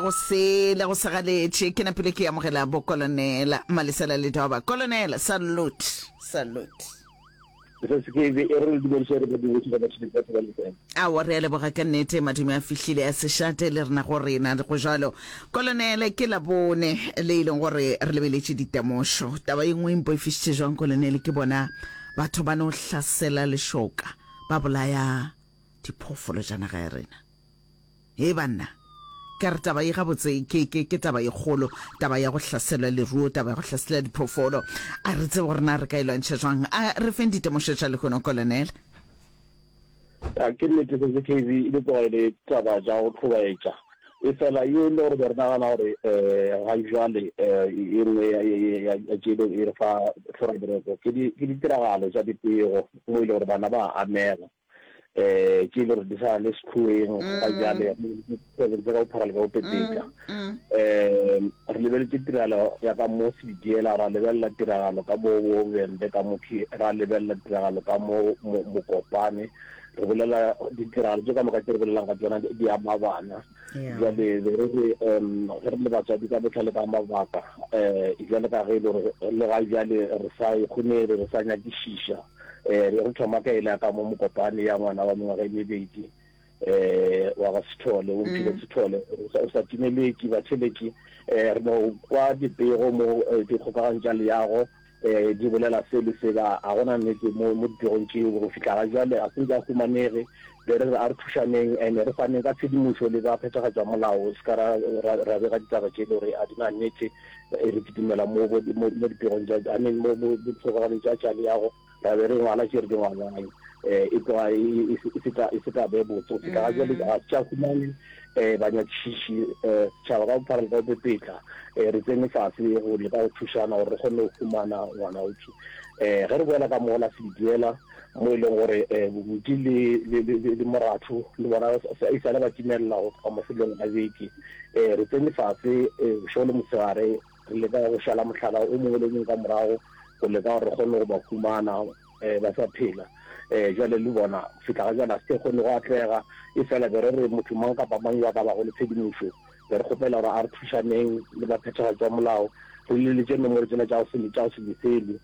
Go sele go segaletše, ke napile ke amogela bo Kolonela Malesela le Doba. Kolonela, salute, salute. Mrs. Kevy, e re le dumediše re badiredi ba batšhelete ba Thobane FM. Aowa, re a leboga ka nnete, madume a fihlile a se šate le rena go rena. Go jalo, Kolonele, ke Labone le e leng gore re lebeletše ditemošo. Taba ye nngwe e mpoifišitše jwang, Kolonele, ke bona batho ba no hlasela lešoka, ba bolaya diphoofolo tša naga ya rena. Hei banna, ke a re taba ye gabotse ke, ke, ke taba ye kgolo, taba ya go hlaselwa leruo, taba ya go hlasela diphoofolo. A re tsebe gore na re ka e lwantšha jwang. A re feng ditemošo tša lehono, Kolonel. A ke nnete se, CKV e be tloga e le taba ja go hlobaetša. Efela ye e le gore be re nagana gore ga jwale e nngwe ya, ya, ya, ya tšelo e re fa hlora-boroko, ke di, ke ditiragalo tša dipego mo e le gore bana ba a amega. eh ke le re di sa le sekhueng ga mm. jale tsebe tsa go phara le go petetsa mm, mm. eh re lebeletse tiragalo ya ka mo se diela ra lebella tiragalo ka bo bo bembe ka mo ke ra lebella tiragalo ka mo mo kopane re bolela ditiragalo tse ka moka tse re bolelang ka tsona di ama bana jale re re um re le batswadi ka botlhale ka mabaka eh jale ka ge e le re le ga jale re sa e kgone re sa nyakishisha um be re thoma ka e la ka mo mokopane ya ngwana wa mengwaga e mebedi um wa ga sethole o mphile mm. sethole o sa timeleki batheleki um re no kwa dipego mo eh, dikgokagano tša leyago um di bolela se le seba ga gona nnete mo dipegong tšeo go fitlha ga jale ga se nka humanege Be re re, a re thušaneng and re faneng ka tshedimošo le ba phethagatša molao, se ka ra ra ra bega ditaba tše e le gore ga di na nnete. Re kitimela mo bo mo mo dipegong tša I mean mo mo mo dikgokaganong tša tša leago, ra be re ngwala tše re di ngwalang e tloga e e e se ta e se ta be botse go feta ga bjale. Ga se tša humane banyakišiši, setšhaba ka bophara le ka bopepetla re tsene fase go leka go thušana gore re kgone go humana ngwanautswe. Ge re boela ka mola Sediela, mo e leng gore Bobudi le le le le le Moratho le bona sa e sale ba timelela go tloga mafelong a beke. Re tsene fatshe bošego le motshegare re leka go šala mohlala o mongwe le o mongwe ka morago go leka gore re kgone go ba humana ba sa phela. Jwale le bona go fihla ga jwale ga se ke kgone go atlega e fela be re re motho mang kapa mang yo a ka bago le tshedimošo be re kgopela gore a re thušaneng le baphethagatši ba molao re leletše nomoro tsela tša go se tša go se lefele.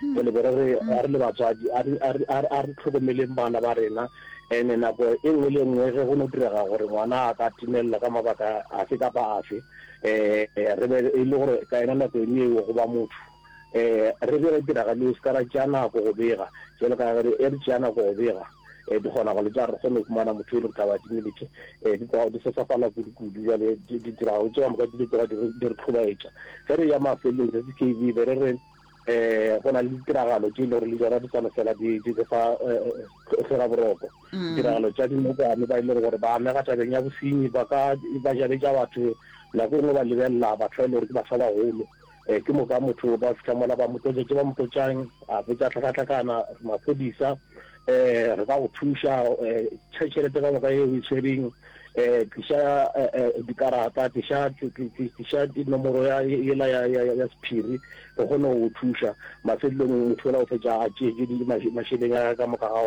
Go le gore re re le batswadi a re a re a re a re tlhokomeleng bana ba rena ene nako e nngwe le nngwe ge go no direga gore ngwana a ka timelela ka mabaka afe kapa afe eh re be e le gore ka yena nako ene eo go ba motho eh re be re tiragale se ka ra tšea nako go bega jalo ka re e re tšea nako go bega eh di kgona go le tsa re kgone go fumana motho e le ka ba diminete eh di tloga di sesafala kudu kudu jale di dirago tšeo moka di tloga di re tlhobaetša ge re ya mafelong re se ke be re re um go na le ditiragalo tše e le gore le jona di swane fela di re fa tlhoraboroko mm. ditiragalo tša dinokwane ba e le gore ba amega tabeng ya bosenyi ba ka ba jabetša batho nako e nngwe ba lebelela batho ba e le gore ke batho ba bagolo um ke moka motho ba fitlha mola ba motlotšetse ba motlotšang a botsa tlhakatlhakana maphodisa um re ka go thuša um tšhelete ka moka e o e tshwereng um tliša dikarata tliša nomoro ela ya sephiri re kgone go thuša mafelelong motho ola o fetša a tšeetše mašeleng a ka moka ga ona